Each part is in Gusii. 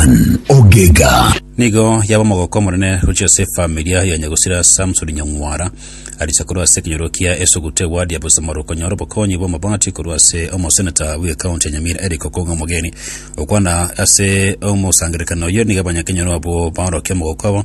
Ann Ogega. Nigo yaba omogoko omonene gochia ase efamilia ya Nyagusira Samson Nyang'wara. Arisia korwa ase ekenyoro kia Esuguta ewadi ya Bosamoro konyora obokonyi bw'amabati korwa ase omoseneta bw'ekaunti ya Nyamira Eric Okong'a Omogeni. Okwana ase omosangererekano oyio nigo abanyakenyoro abwo baorokia omogoko obo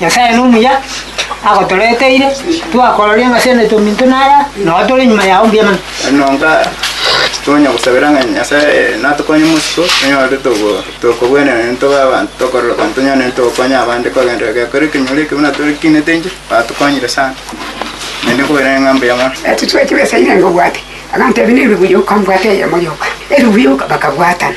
Nyasae nomuya, agotoreteire, twakororia ng'a ase enaito minto naya, nao tore nyuma yao mbuya mono. Nonka tonya gosabera ng'a Nyasae natokonye mosiko onyore togo tokogwenerana nento tobe abanto tokororoka tonyare nento gokonya abande kogenderera gekore ekenyoro eke buna tokinete inche, batokonyire sana. Naende nkoboera ning'a mbuya mono. Etuchweki besa irenga obwate. Abanto ebi nebi buyuka mbwate eyemo yoka, ebi buyuka bakabwatana.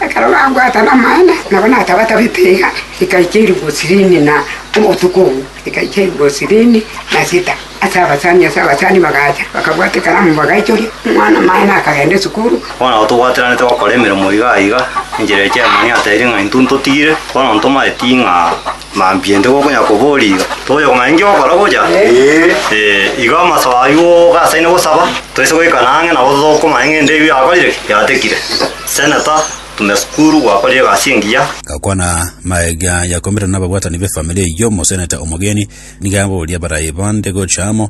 Ekero bambwatana amaene, nabo natabatabete iga, rikaikia iribu sirini na obotuko obwo rikaikia iribu sirini na sita. Ase abasani ase abasani bagacha, bakabwata ekaramu bagaichoria, omwana maene akagenda esukuru. Bono nabo tobwatiranete gokora emeremo iga iga, enchera eria Chairman atebirie ng'a intwe ntotigire, bono ntomaeti ng'a. Mambia inde gokonya kobori iga. Togocha komanya ninki ogokora gocha. Eh, iga amasoba aywo ogasaine gosaba, toise goikana ang'e nabo tokomanya ng'ende eywo yakorire ki? Yatekire. Senator, tume sukuru, gwakorire egasi engiya. Gakwana magega yakomerwa nababwatani b'efamiri eyio, omoseneta omogeni nigo aboria baraye bande gocha amo,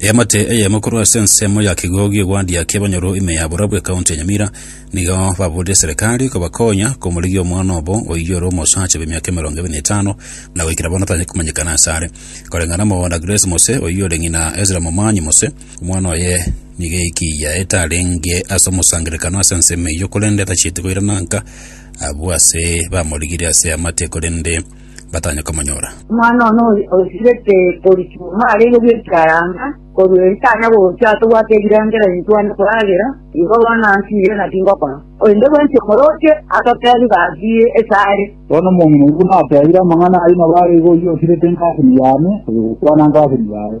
Eamate eyemo korwa ase ensemo ya kigo gi'ogwandia ki'abanyoro ime ya Burabwa ekaunti ya Nyamira nigo baburetie serikari kobakonya komorigia omwana obo oyio ore omosacha bw'emiaka emerongo ebe na etano na goikera bono tanyare komanyekana ase are. Koreng'ana amo na Grace Mose oyio ore ng'ina Ezra Momanyi Mose, omwana oye nigo eiki yaete arenge ase omosangererekano ase ensemo eyio korende tachieti koirana nka abwo ase bamorigire ase eamate korende batanye komonyora. Omwana one o- oisirete korichwa marenge bw'ekiaranga, korwa ere tanya gocha atobwate ebirengererio ntwane koragera, igo bono ansiire na tingokora. Korende bwensi omoroche atotebi gaki ase are. Bono omong'ina oigwa natebire amang'ana ayio mabaro igo oyio osirete engasini yane, oyogokwana engasini yaye.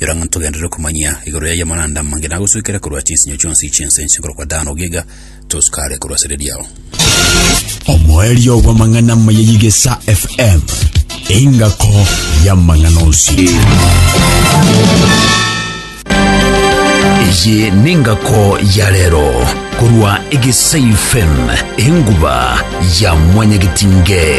Yora ng'a ntogenderere komanyia igoro y'ayio amaranda amange nagosuikera korwa chinsinyo chionsi chi'ense inche nkorokwa Dan ogiga toskare korwa asare riao. Omoerio bw'amang'ana amaya y'Igesa FM, engako y'amang'ana onsi. Eye nengako ya rero korwa Egesa FM, enguba ya mwanyagetinge.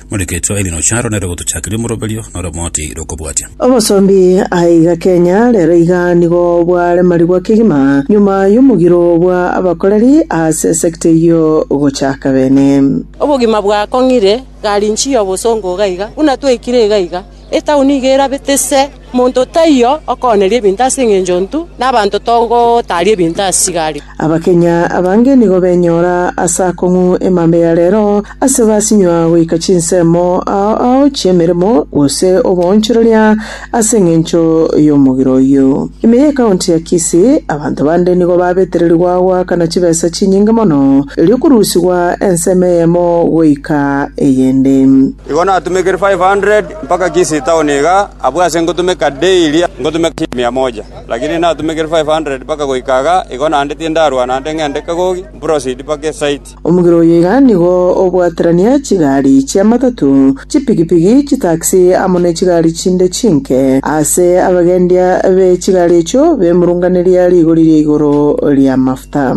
Morekecho Eddie Ocharo nere ogotochakeria omoroberio nore omoti rokobwatia. Obosombi aiga Kenya rero iga nigo bwaremarigwa kegima nyuma y'omogiro bwa abakoreri ase sector eyio gochaka bene. Obogima bwakong'ire, garinchi y'obosongo iga iga, buna twaikire iga iga. Etaoni iga erabete ise, monto taiyo okooneria ebinto ase engencho ntu, na abanto togotaaria ebinto ase chigari. Abakenya abange nigo benyora ase akong'u emambe ya rero ase basinywa goika chinsemo ao ao chi'emeremo gose oboonchoreria ase engencho y'omogera oyio. Ime ye county ya Kisii, abanto bande nigo babetererigwa goakana chibesa chinyinge mono, erio korusigwa ensemo eyemo goika eyende. Igo natumekire five hundred mpaka Kisii town iga, abwo ase ngotumeka daily ngotumeka chinsa mia moja. Lakini natumekire five hundred mpaka goika iga, igo naende tindarwa naende ng'ende kagogi, mproceed mpaka esite. Omogera oyo iga nigo obwaterania chigari chi'amatatu, chipigipigi, chitaxi, amo ne chigari chinde chinke ase abagendia be chigari echio bemurunganeria rigori ria igoro ri'amafuta.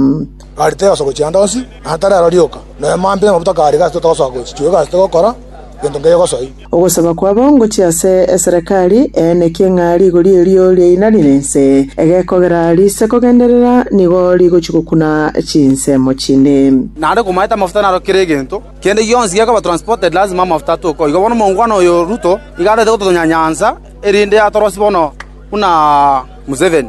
Arete yonsi ogochianda onsi, na atarero rioka, na emo ambe namabuta kare gasete togosoa gochi chio egasete gokora gento nkeyo gosoi. Ogosaba kwabo ngochie ase eserekari eenekie ng'a rigori erio riainanire ense, egekogera riise kogenderera nigo rigochia gokuna chinsemo chinde. Naende komaete amafuta naro kera egento kende gionsi gekoba transported lasima amafuta atoke igo bono omongwana oyo Ruto iga arete gototonyanyansa erinde atorosie bono buna Museveni.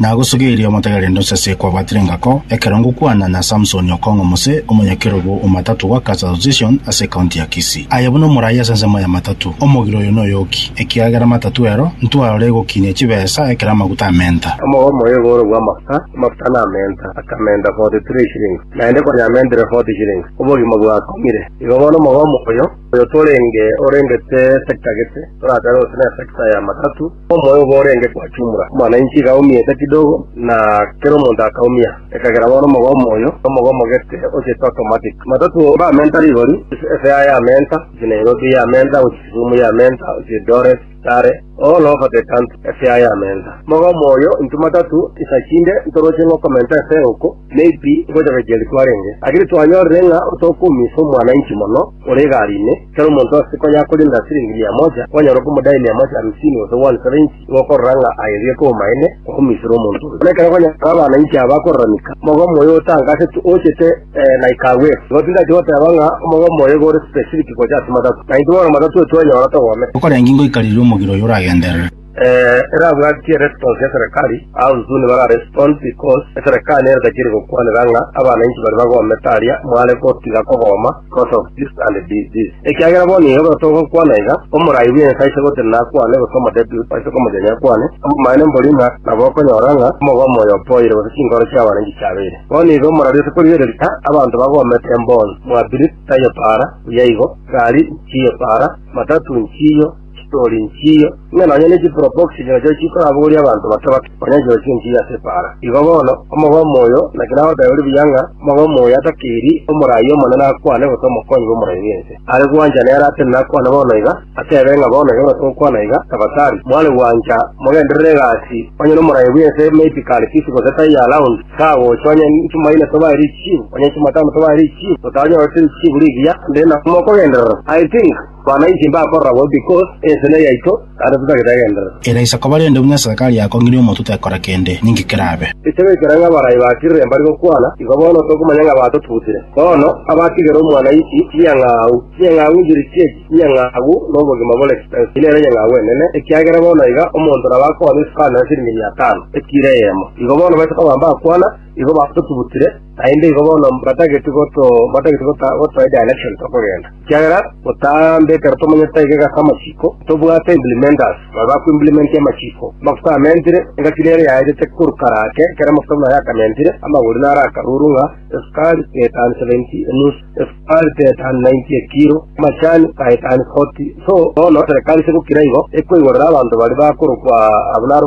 Nagosogeirie omotegereri nonsese kwabatire engako ekero ngokwana na Samsoni Okong'o Mose, omonyakerogo o Matatu gwa Cars Association ase ekaunti ya Kisii. Aye buna omorai ase ensemo ya Matatu, omogire oyo noyoki, ekiagera Matatu ero ntwao ore egokinia chibesa ekero amaguta amenta. Omogogo omoya igoro bw'amafuta, amafuta namenta, akamenta forty three shillings, naende konya amentire forty shillings, obogima bwakong'ire. Igo bono omogogo omoyo, oyo torenge orengete esetagete, toratebe gose nesecta ya Matatu, Omoyo obo orenge gwachumura, mana inchi igaumia ete kidogo, na kera omonto akaumia, ekagera bono omogomo oyo, na omogomo gete ochete automatic. Matatu bamenta rigori, Efea yamenta gochia Nairobi, yamenta gochia Kisumu, yamenta gochia Eldoret, Kitale, all over the country efea yamenta. Omogomo oyo intwe matatu isa chinde ntoroche ng'a okomenta efea oko maybe ngocha gochia eritware enge, lakini twanyorire ng'a otokoumisa omwana inchi mono ore egari ime, Kera omonto ase konya akorenda siringi mia moja, kwanyora okomodaia mia moja hamsini gose one seventy, nigo okorora ng'a aye erio ekomomaene gokomisera omonto oyo. Buna ekero konya abana inche aba bakoraramika, omogomo oyo otanka ase tu ochete eh, na ikagwera. Igo tindache goteba ng'a omogomo oyo iga ore specific gocha ase matatu, na intwe bono matatu oyo twanyora togomete. Okorengi ngoikareria omogiro oyo oragenderere. Ee, erabwatie eresponse ya serekari, au soon bara respond because eserekari nere tachiri gokwanera ng'a abanainchi bare bagomete aria mware gotiga kogoma because of this and thi- this. Ekiagera bono iga buna togokwana iga, omorai bw'ense aise gotira nakwane gose omodepute aise komochani akwane, obomaene mbori ng'a nabo okonyora ng'a omogomo oyo opoire gose chinkoro chi'abananchi chiabeire. Bono iga omorari ase korigereria ng'a abanto bagomete embonsi, mwabiri taiyo para, buya igo, gari nchiiyo para, matatu nchiiyo, Chitori nchiyo, ng'a nonya ne chipropoxy chirochio chikorabogorie abanto bake bake, onye chirochio nchiyo ase epaara. Igo bono, omogomo oyo, naki nagoteeba ore buya ng'a, omogomo oyo atakiri omoraai omonene akwane gose omokonyi bw'omoraai bw'ense, are gwancha nere atene nakwane bono iga, ateebe ng'a bono iga buna togokwana iga, Tafadhali, mware gwancha, mogenderere egasi, onye n'omoraai bw'ense maybe kare fisi gose tie ya round, tagocha, onye chimo ine tobae richibu, onye chimo tano tobae richibu, totanyorete richibu rigiya, nde na mokogenderera, I think. Bana inche mbakorora bobe because ense ne yaito, naende totagete egenderero. Era isiko barende buna eserikari yakong'ire omonto tekora kende, ninki kerabe? Ekiagera ekero ng'a abarai ba Kirire mbare gokwana, igo bono tokomanya ng'a batotutire. Bono, abatigere omwanyainchi, chinyang'au, chinyang'au inchiri chi'echi chinyang'au nobogima bore ki? Ense nere nyang'au enene, ekiagera bono iga omonto nabo akonya esukari na siringi miatano, ekiro eyemo. Igo bono baise koba mbakwana, igo batotutire, naende igo bono mbatageti goto, mbatageti gota, gotoa edirection tokogenda. Ekiagera gotambe ekero tomanyete aye egasi amachiko, tobwate implementers babe bakoimplementia amachiko. Amafuta amentire, engaki nere yaetete korwa kare ake, ekero amafuta buna ayakamentire, amagori naro akaruru ng'a esukari etani seventy enusu, esukari etani ninety ekiro, amachani etani forty. So bono serekari ase gokira igo ekoigorera abanto baria bakorokwa abwo naro.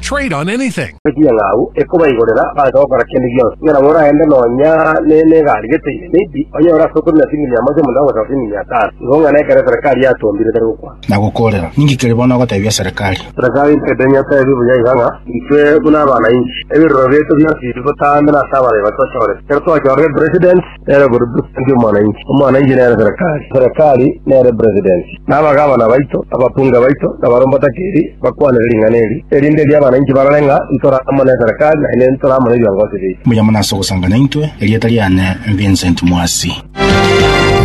Trade on anything. Naki eng'au ekobaigorera baancha gokora kende gionsi, ng'a nabo oraende nonya ne negari geteine, maybe onye ore ase okori na singini mia moja monda gosaba singini mia tano, igo ng'a nekero eserekari yatombire etari gokwana. Nagokoorera, ninki keria bono ogotebia serekari? Serekari ntaete nyotebie buya iga ng'a, intwe buna abana inchi, ebiroro biaito bionsi biri botambe nase abarebi bato bachorete, ekero twachorire president, nere burudusiti bw'omwananchi, omwananchi nere serekari, serekari nere presidenti. Na abagavana baito, na ababunge baito, na abarombe otakiri, bakwanere ring'ana eri, erinde erio abananchi barore ng'a ntore amo neserekari, na inde ntore amo nebiongosi biaito. Mbuya mono ase ogosanga naintwe, erieta riane Vincent Mwasi.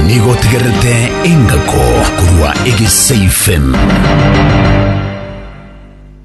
Nigo otegererete engako korwa egesaifm.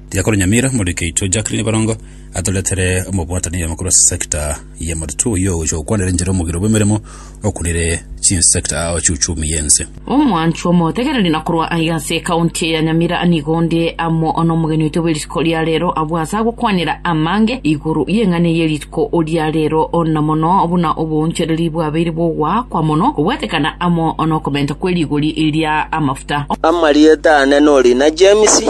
Tiga koro Nyamira, Moriki aitwe Jacqueline Barongo atoretere omobwataneiyo amakuru ase sector Ye motutu oyio ogocha gokwanera enchera omogiro bw'emeremo okunire chinsector ao chiuchumi y'ense. Omwanchwa omotegereri na korwa aiga ase ekaunti eye ya Nyamira nigo onde amo nomogeni oito bwe rituko ria rero abwo ase agokwanera amange igoro y'eng'ana eye rituko ria rero na mono buna oboonchereri bwabeire bw'ogoakwa mono kobwatekana amo nokomenta kwe rigori ria amafuta. Amarieta ane n'orina James.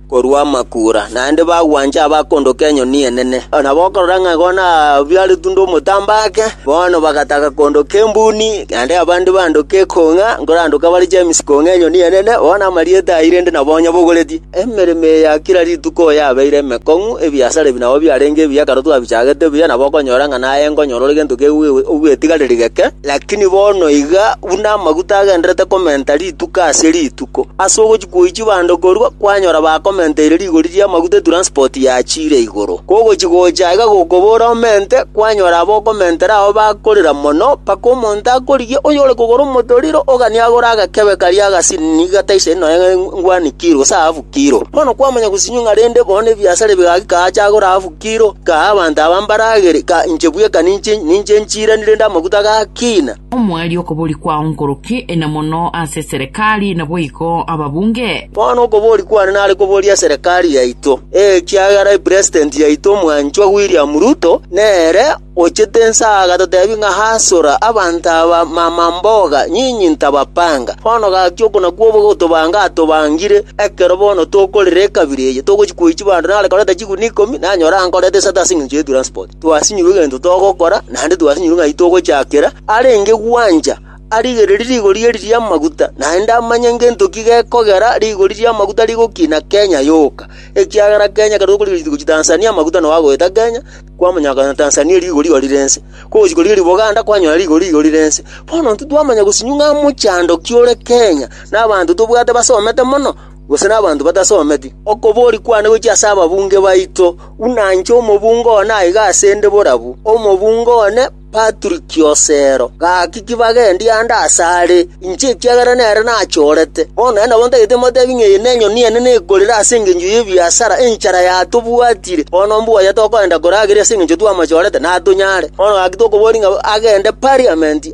korwa amakuura, naende bagwancha abakondoka enyoni enene. Na bokorora ng'a igo nabiaretwe n'omotamba ake, bono bagataka kondoka embuni, naende abande bandoke ekong'a, nkorandoka bare Jemisi kong'a enyoni enene, bono amarieta aye rende nabo onye bogoretie. Emeremo eye ya kera rituko yabeire emekong'u, ebiasara ebi nabo biarenge ebiya ekero twabichagete buya, nabo okonyora ng'a naye nkonyora ore gento ke'u ogwetigareri geke, lakini bono iga buna amaguta agendererete komenta rituko ase rituko, ase ogochi. Goichia bande korwa kwanyora bakomenteire rigori ri'amaguta etranspoti yachiire igoro. Kogochia gocha aiga gokobora omente, kwanyora abokomentera ao bakorera mono, mpaka omonto akorigia oyore kogora omotoriro, oganie agore agakebe karia agasini gataisaini nonya engwani kiro, gose ahafu kiro. Bono kwamanya gosinywa ng'a rende bono nebiasare bigaki kaache agore ahafu kiro, kaa abanto aba mbaragere, ka inche bweka ninche ninche nchiirani rende amaguta gakina. Omwari okobori kwao nkoroki na mono ase eserekari naboigo ababunge. Bono okobori kwane nare kobori eserekari yaito, ekiagera epresident yaito omwanchwa William Ruto nere ochete ense agatotebi ng'a hasora abanto aba mamamboga nyinyi ntabapanga. Bono gaki oko nakwo ogotobanga atobangire ekero bono tokorera ekabira eye togochi koichi bande nare koreta chiguni ikomi nanyore ankorete esati aseng'encho ye transport. twasinyirwe egento togokora, naende twasinyirwe ng'ai togochakera, arenge gwancha arigererie rigori eri ri'amaguta, naende amanye ngento ki gekogera rigori ri'amaguta rigokina Kenya yoka, ekiagera Kenya ekero tokorigereria tigochia Tanzania amaguta nao agoeta Kenya, kwamanya konya Tanzania rigori igori rense, kogochia korigereria Boganda kwanyora rigori igori rense. Bono intwe twamanya gosinywa ng'a mochando ki ore Kenya, na abanto tobwate basomete mono. gose nabanto batasometi. Okobooria kwane gochia ase ababunge baito, buna inche omobunge one aiga ase 'nde borabu omobunge one Patrick Osero. Gaki ki bagendie ande asare inche ekiagera nere nachorete. Bono nere nabo ntagete motebie ng'a eye nenyoni enene ekorire ase engencho y'ebiasara, enchara yatobwatire, bono mbuya tokoenda korageria ase engencho twamachorete, natonyare. Bono gaki tokobooria ng'a agende Parliament,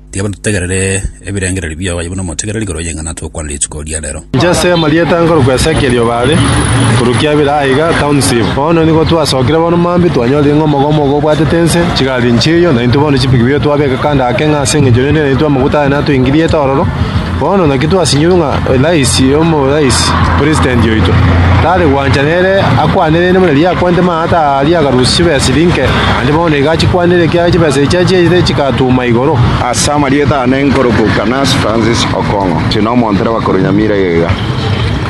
Tiga batutegerere ebirengererio biao aye buna omotegereri igoro y'eng'ana togokwana rituko ria rero. Inche ase amarieta a nkorokwa Esekieli o Baale, korwa kiabera aiga, township. Bono nigo twasokire bono mambia, twanyorire ng'a omogomo ogo obwatete ense, chigari nchiiyo, naintwe bono chipiki biaito twabeka kando ake ng'a ase engencho rende naintwe amaguta aye natoingiriete ororo, Bono naki twasinyorwe ng'a rais omorais, president oito, tare gwancha nere akwane rende buna riria akwanete maata aa aria agarusia chibesa chiria inke, naende bono nigo achikwanire ekiagera chibesa echi achiaite chigatuuma igoro. Ase amarieta ane nkoroboka Nancy Francis Okong'o, tiri nomonto ere bakorunyamira iga iga.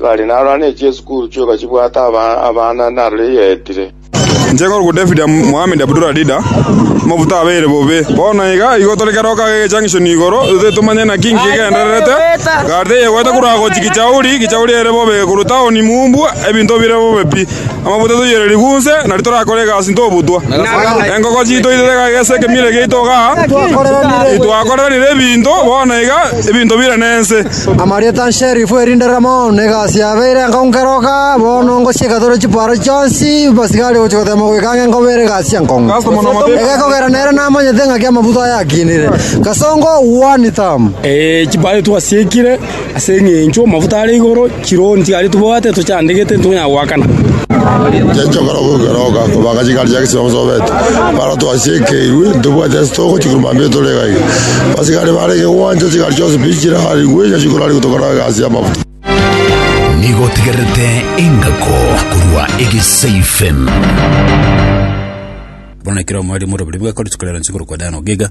Bari narora ne chiesukuru chioka chibwate abana narore yaetire. Inche korokwo David Mohamed Abdul Adida, Amafuta abeire bobe. Bono iga igo tore kera okaga egechang'ishoni igoro, totari tomanye naki nkigendererete, egari teyegwete korwa agochia Kichauri, Kichauri ere bobe korwa taoni Mumbu, ebinto bire bobe pi. Amafuta toyiere rigwa nse, nari torakore egasi ntobutwa. Enkoko chiito itoire egaiga ase ekemiro egiaito igaa, titwakoranire ebinto, bono iga ebinto bire nense. Amarieta nsherifu erinde ramo negasi yabeire enkongeroka bono ngochia egatoro chiparo chionsi basigare gochia gotema goika ng'a enkobeere egasi enkonge. Egekogera nere namanyete ng'aki amabuta aya akinire. Kasongo one tam. Ee, chipare twasiekire ase eng'encho amafuta are igoro chironsi aria tobwate tochandegete ntitonyara goakana. Chiachakora goikeroka, kobanga ching'ari chia gesoesobeto. Twasiekeirwe, ntobwati ase togochia korwa mambia tore iga iga. Abasigari bare egegwancha, chigari chionsi pi chirarigwe, inyache chikorarigwe tokore egasi y'amafuta. Nigo tigerete engako korwa egesaifen. Bono ekero omwarimu ore oborimo bwekore chikoreransi korokwa Dan Ogega,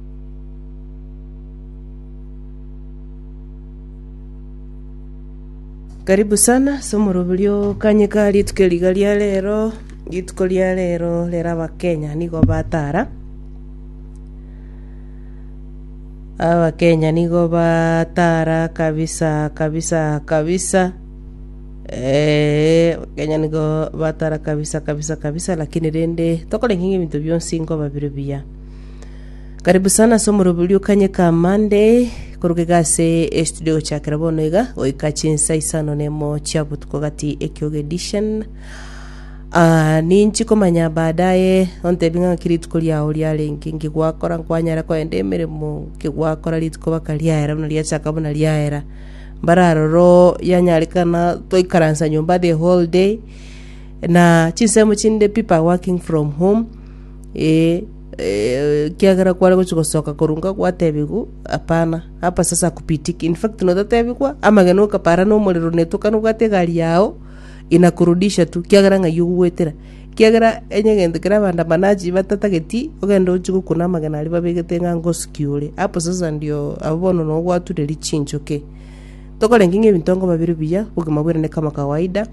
Karibu sana ase omoroberio o Kanyika rituko riga ria rero rituko ria rero rero abakenya nigo batara abakenya nigo batara kabisa kabisa kabisa eh, abakenya nigo batara kabisa kabisa kabisa lakini rende tokorenge ng'a ebinto bionsi nkoba bire buya Karibu sana ase omoroberio o Kanyeka Mande koroka iga ase estudio gochakera bono iga goika chinsa isano na emo chia botuko gati Ekioge Edition. Ah, ninchi komanya baadaye ontebi ng'a ng'aki rituko riao riarenge nki gwakora nkwanyara kogenda emeremo nki gwakora rituko baka riaera buna riachaka buna riaera mbare aroro yanyarekana twaikaransa nyomba the whole day na chinsemo chinde people are working from home Ee, ee, ekiagera kware gochia gosoka korunka gwatebigwa, Hapana, hapa sasa hakupitiki. In fact, notatebigwa, amagena okapara na omorero netoka nobwate egari yao, inakurudisha tu, kiagera ng'ai ogogwetera. Kiagera enye egento kere abandamanaji batatageti, ogende ochie gokuna amagena aria babegete ng'a ngosikiore. Hapo sasa ndio abo bono no gwature richinchoke. Tokorenge ng'a ebinto nkoba bire buya, obogima bwere ne kama kawaida,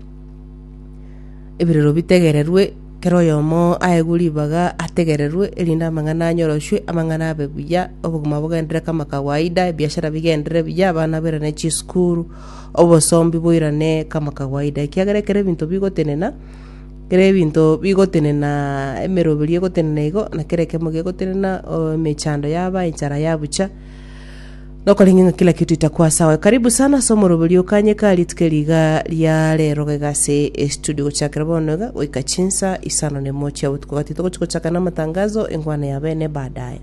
ebirero bitegererwe, Kera oyomo aegwe ribaga ategererwe, erinde amang'ana anyoroshwe, amang'ana abe buya, obogima bogenderere kama kawaida, ebiashara bigenderere buya, abana bairane chisukuru, obosombi boirane kama kawaida. Ekiagera ekero ebinto bigotenena, ekero ebinto bigotenena, emeroberio egotenena igo, na kera ekiamo gegotenena, emechando yaba, enchara yabucha. Nokorenge ng'a kila kito itako ase aye. Karibu sana ase omoroberio o Kanye ka rituko eri iga ria rero gaiga ase estudio gochakera bono iga goika chinsa isano na emo chia botuko gati togochi gochaka na amatangazo engwana ya bene baadaye.